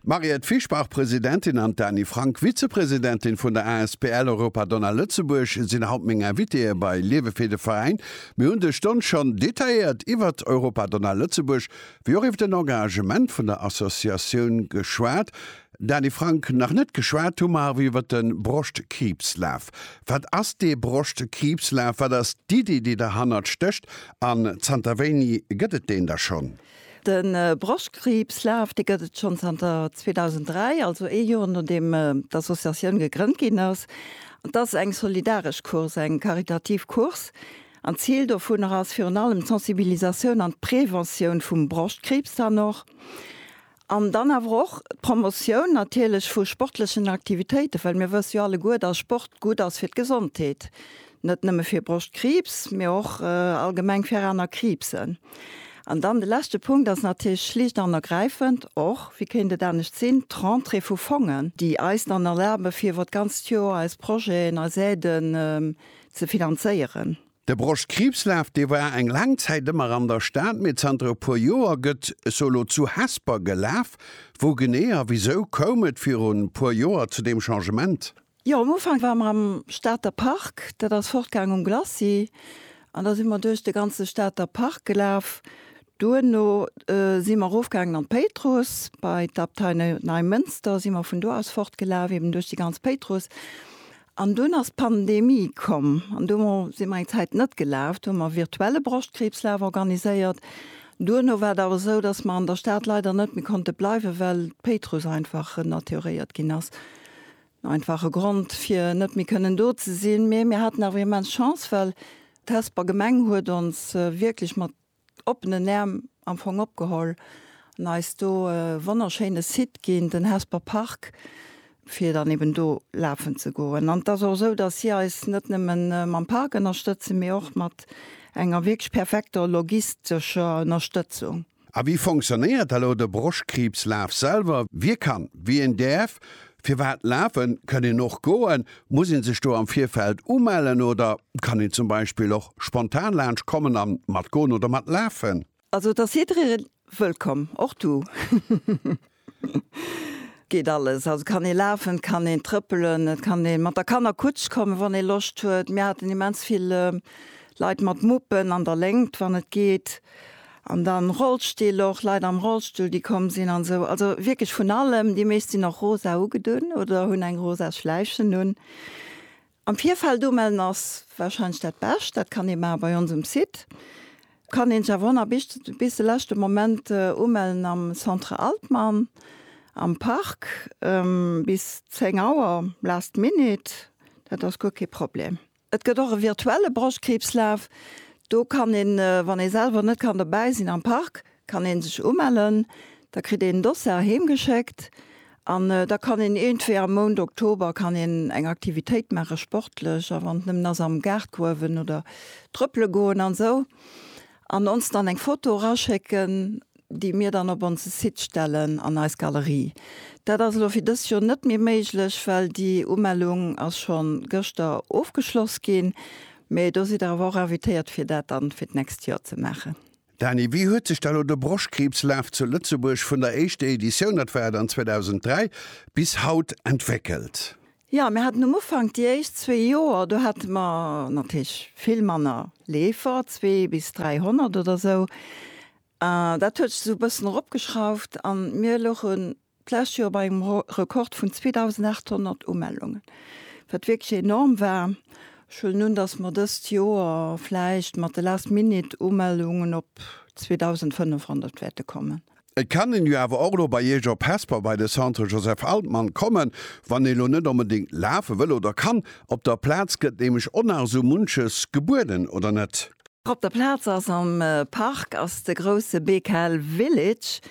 D'Mariette Fischbach, Presidentin, an d'Dani Frank, Vizepresidentin vun der Asbl Europa Donna Lëtzebuerg, sinn haut meng Invitéeë bei Liewe fir de Veräin. Mir hunn des Stonn schonn detailléiert iwwert Europa Donna Lëtzebuerg, wéi och iwwer den Engagement vun der Associatioun geschwat. Dani Frank, nach net geschwat hu mer awer iwwert de Broschtkriibslaf. Wat ass dee Broschtkriibslaf? Wat ass d'Iddi, déi derhannert stécht? An zanter wéini gëtt et deen da schonn? De Broschtkriibs Laf, dee gëtt et schonn zanter 2003, also ee Joer nodeem d'Associatioun gegrënnt ginn ass. An t'ass eng solidaresch Course, eng karitativ Course. An d'Zil dovunner ass virun allem d'Sensibilisatioun an d'Preventioun vum Broschtkriibs dann och. An dann awer och d'Promotioun natierlech vu sportlechen Aktivitéiten, well mir wësse jo alleguer, dass Sport gutt ass fir d'Gesondheet, net nëmme fir Broschtkriibs, mee och allgemeng fir aner Kriibsen. An dann de leschte Punkt ass natierlech schlicht an ergräifend och, wéi kéint et anescht sinn, d'Rentrée vu Fongen, déi eis dann erlabe fir iwwer d'ganzt Joer eis Projeten, eis Aiden ze finanzéieren. De Broschtkriibslaf, dee war eng laang Zäit ëmmer an der Stad, mee zanter e puer Joer gëtt sou elo zu Hesper gelaf. Wou genee a wisou koum et virun e puer Joer zu deem Changement? Jo, am Ufank ware mer am Stater Park, dat ass fortgaang um Glacis, an da si mer duerch de ganze Stater Park gelaf. Duerno si mer erofgaangen an d'Péitruss, bei d'Abtei Neimënster si mer vun do aus fortgelaf, eben duerch déi ganz Péitruss. An dunn ass d'Pandemie komm an do si mer eng Zäit net gelaf. Do hu mer virtuelle Broschtkriibslaf organiséiert. Duerno war et awer esou, dass mer an der Stad leider net méi konnte bleiwen, well d'Péitruss einfach renaturéiert ginn ass. Einfach e Grond, fir net méi kënnen do ze sinn. Mee mir haten awer immens Chance, well d'Hesper Gemeng huet ons wierklech mat oppenen Äerm am Fong opgeholl an eis do e wonnerschéine Site ginn, den Hesper Park, fir dann eben do lafen ze goen. An et ass och esou, datt si eis net nëmme mam Park ënnerstëtzen, mee och mat enger wierklech perfekter logistescher Ënnerstëtzung. A wéi fonctionnéiert elo de Broschkriibslaf selwer? Wie kann, wien däerf Firwat lafen? Kënn een och goen? Muss een sech do am Virfeld umellen oder kann een zum Beispill och spontan laanscht kommen an mat goen oder mat lafen? Also et ass jiddereen wëllkomm, och du. Geet alles, also kann een lafen, et kann een trëppelen, et kann een mat der Kannerkutsch kommen wann een Loscht huet. Mir haten immens vill Leit mat Muppen an der Léngt wann et geet. An dann Rollstill och, Leit am Rollstull déi komm sinn an esou. Also wierklech vun allem. Déi meescht sinn och rosa ugedunn oder hunn eng rosa Schläichen un. Am Virfeld umellen ass warscheinlech dat Bescht. Dat kann ee maache bei ons um Site. Kann een sech awer ënner Bicht bis de leschte Moment umellen am Centre Altmann am Park bis 10 Auer, last minute. Dat ass guer kee Problem. Et gëtt och e virtuelle Broschtkriibslaf. Do kann een, wann ee selwer net kann dobäi sinn am Park, kann ee sech umellen. Da kritt een en Dossar heem geschéckt an da kann een iergendwéi am Mount Oktober kann een eng Aktivitéit maache sportlech, a wann et nëmmen ass am Gaartgruewen oder trëppele goen an esou, an ons dann eng Foto eraschécken. déi mir dann op onse Site stellen an eis Galerie. Dat ass elo fir dëst Joer net méi méiglech, well déi Umellung ass scho gëschter ofgeschloss ginn. Mee do sidd der awer och invitéiert, fir dat dann fir d'nächst Joer ze maachen. Dany, wéi huet sech da lo de Broschkriibslaf zu Lëtzebuerg vun der éischter Editioun, dat war dann 2003, bis haut entwéckelt? Jo, mir haten um Ufank, déi éischt zwee Joer, do hate mer natierlech vill manner Leefer, zwee bis 300 oder sou. Dat huet sech esou e bëssen eropgeschrauft a mir louchen d'lescht Joer bei engem Rekord vun 2.800 Umellungen, wat wierklech enorm war. Ech huelen un, datt mer dëst Joer vläicht mat de Last-Minute-Umellungen op 2.500 wäerte kommen. Et kann een jo awer och elo bei Iech op Hesper bei de Centre Joseph Altmann kommen, wann ee elo net onbedéngt lafe wëll oder kann. Op der Plaz gëtt nämlech och nach esou munches gebueden, oder net? Op der Plaz ass am Park ass de grousse BKL Village.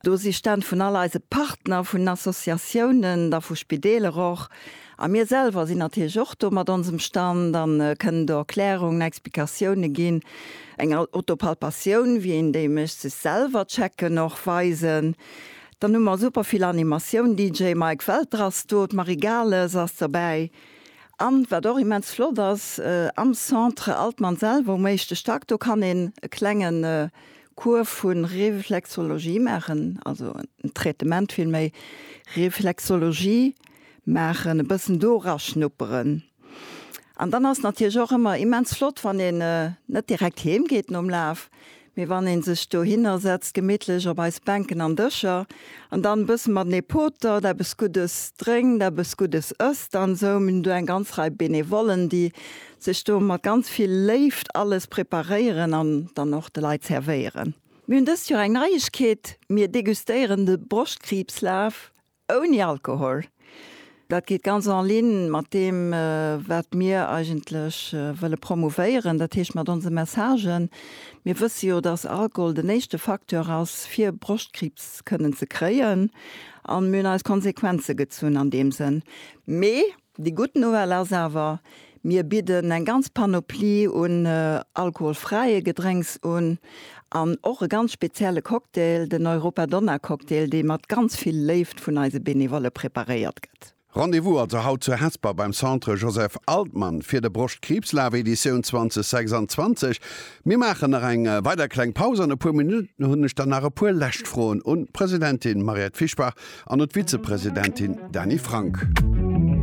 Do si Stänn vun all eise Partner, vun Associatiounen, da vu Spideeler och. A mir selwer sinn natierlech och do mat onsem Stand a kënnen do Erklärungen, Explikatioune ginn. Eng Autopalpatioun, wéi een déi mécht, sech selwer checken och, weisen. Dann hu mer super vill Animatioun, DJ Mike Welter ass do, d'Marie Gales ass dobäi. An wat och immens flott ass, am Centre Altmann selwer um éischte Stack, do kann een e klenge Cours vu Reflexologie maachen, also en Traitement villméi, Reflexologie maachen, e bëssen do eraschnupperen. An dann ass natierlech och ëmmer immens flott, wann een net direkt heem geet nom Laf, Mee wann een sech dohinner setzt, gemittlech op eis Bänken an Dëscher, an dann e bëssen matenee potert, eppes Guddes drénkt, eppes Guddes ësst an esou. Mir hunn do eng ganz Rei Benevollen, déi sech do mat ganz vill Léift alles preparéieren an dann och de Leit servéieren. Mir hunn dëst Joer eng Neiegkeet, Mir degustéieren de Broschtkriibslaf Ouni Alkohol. Dat geet ganz en ligne mat deem, wat mir eigentlech wëlle promouvéieren, dat heescht mat onse Messagen. Mir wësse jo, dass Alkohol den éischte Facteur ass, fir Broschtkriibs kënnen ze kréien. A mir hunn eis Konsequenze gezunn an deem Sënn. Mee Déi gutt Nouvelle ass awer, Mir bidden eng ganz Panoplie un alkoholfräie Gedrénks un an och e ganz spezielle Cocktail, den Europa Donna Cocktail, dee mat ganz vill Léift vun eise Benevolle preparéiert gëtt. Rendez-vous also haut zu Hesper beim Centre Joseph Altmann fir de Broschtkriibslaf Editioun 2026. Mir maachen nach eng weider kleng Paus. An e puer Minutten hunn ech dann nach e puer lescht Froen un d'Presidentin Mariette Fischbach an un d'Vizepresidentin Dany Frank.